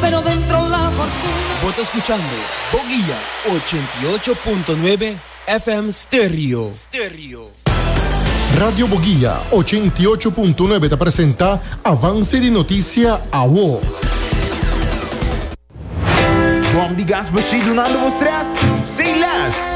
Pero dentro la fortuna. Bo ta skuchando Boguia ochenta i ocho punto nuebe FM Stereo. Radio Boguia ochenta i ocho punto nuebe ta presenta Avance di Noticia Awo. Bom di gas bo shi dunando bo stress? Sin less!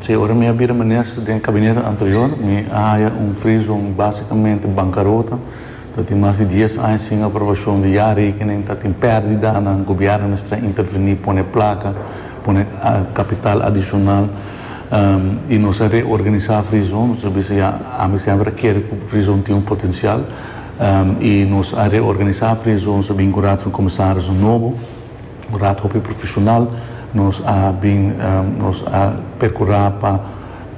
Sey, ora mi a bira minister den kabinet anterior, mi a haya un freezone basikamente bankarota, ta tin mas di dies aña sin aprobashon di ya rekening, ta tin pèrdidanan, gobièrnu mester a intervení, pone plaka, pone kapital adishonal, i nos a reorganisá freezone, nos a bisa ya, ami semper a kere ku freezone tin un potensial, i nos a reorganisá freezone, nos a bin ku raad van komisarisnan nobo. Un rat hopi profesional nos a bin nos a percura pa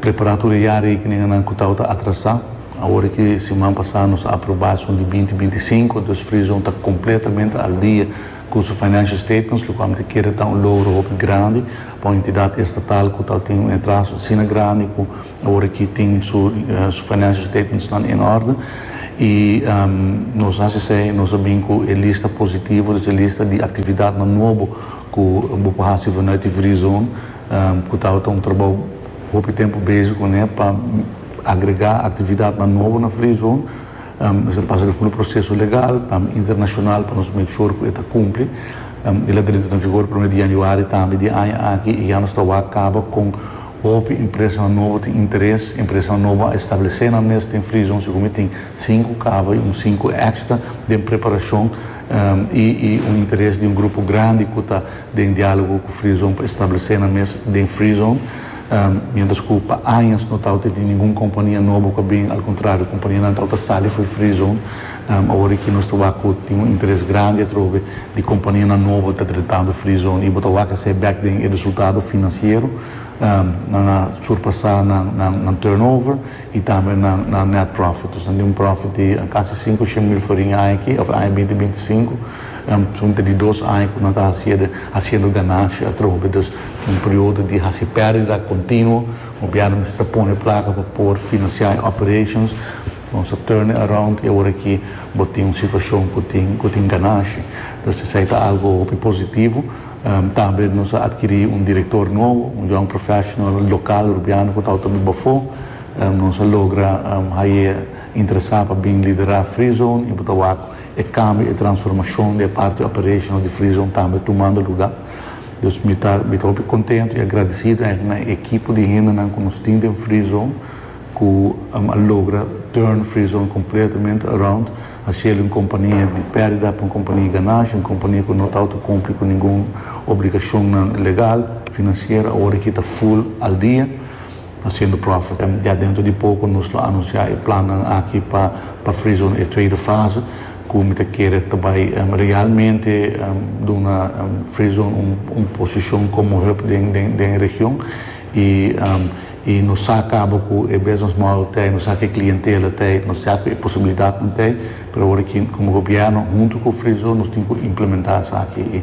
prepara tur e ya rekeninganan cu tabata atrasa. Awor aki siman pasa nos a aproba esun di binti binti sinku, dus Freezone ta completamente al dia cu su financial statements, locual mi ta kere ta un logro hopi grandi pa un entidad estatal cu tabata tin un atraso asina grandi cu Ora ki tin su financial statements nan en orde y nos haci esey nos a bin cu e lista positivo dus e lista di actividadnan nuobo cu bo por haci vanuit di Free Zone cu tawata un trabao hopi tempo bezig cu ne pa agrega actividadnan nuobo na Free Zone mes a pasa diafundo proceso legal internacional pa nos make sure cu e ta cumpli y la drinta na vigor primer di Januari tambe di aña aki y ya nos ta wak caba con Hopi impresanan nobo tin interes. Impresanan nobo a establesé nan mes den Frizon así como e tin sinku kaba i un sinku èkstra den preparashon i i un interes di un grupo grandi ku ta den diálogo ku Frizon pa establesé nan mes den Frizon. Miéntras ku pa añas no tabata tin ningun kompania nobo ku a bini, al kontrario, kompanianan tabata sali for Frizon. Awor aki nos ta wak cu tin un interes grandi atrobe di companianan nobo ta tretando Free Zone y bo ta wak hacé bek den e resultado financiero. Nan a surpasa nan turnover y tambe nan net profit. Nos ta di un profit di casi cinco shen mil forinha aña aki of aña binti binti sinku. Sunta di dos aña cu nan ta haci ede haciendo ganancia atrobe. Dus un periodo di haci perdida continuo. Gobierno mester ta pone placa pa por financia e operations. Nos a turn e around y awor aki bo tin un situacion cu tin cu tin ganashi. Entonces esai ta algo hopi positivo. Tambe nos a adquiri un director nuovo, un young professional local Rubiano cu tawata di bafo. Nos a logra haye interesa pa bin lidera Free Zone y bo ta wak e cambio, e transformacion di e parti operational di Free Zone tambe tumando lugar. Dus mi ta mi ta hopi contento y agradecido eigenlijk na e equipo di hendenan cu nos tin den Free Zone. cu a logra turn Frizon completamente around, haciel di un compania di perdida pa un compania di ganashi, un compania cu no ta auto cumpli cu ningun obligacionnan legal, financiero, awor aki ta full al dia, haciendo profit. Ya dentro di poco nos lo anuncia e plannan aki pa pa Frizon e tweede fase, cu mi ta kere ta bay realmente duna Frizon un posicion como hub den den den region. Y y nos sa cabo cu e business model t'e, nos sa cu e clientela t'e, nos sa cu e posibilidadnan t'e, pero awor aki como gobierno hunto cu Friesel nos tin cu implementa esaki y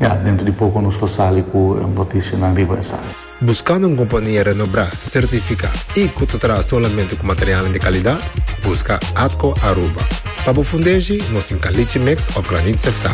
ya, dentro di poco nos lo sali cu noticianan riba esaki. Buscando un compania renobrá, certificá y cu ta traha solamente cu materialnan di calidad? Busca Atco Aruba. Pa bo fundeshi, nos tin calichi mix of granit sefta.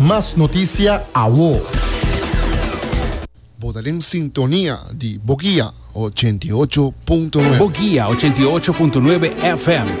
Mas noticia awo. Bo ta den sintonia di Boguia ochenta i ocho punto nuebe. Boguia ochenta i ocho punto nuebe FM.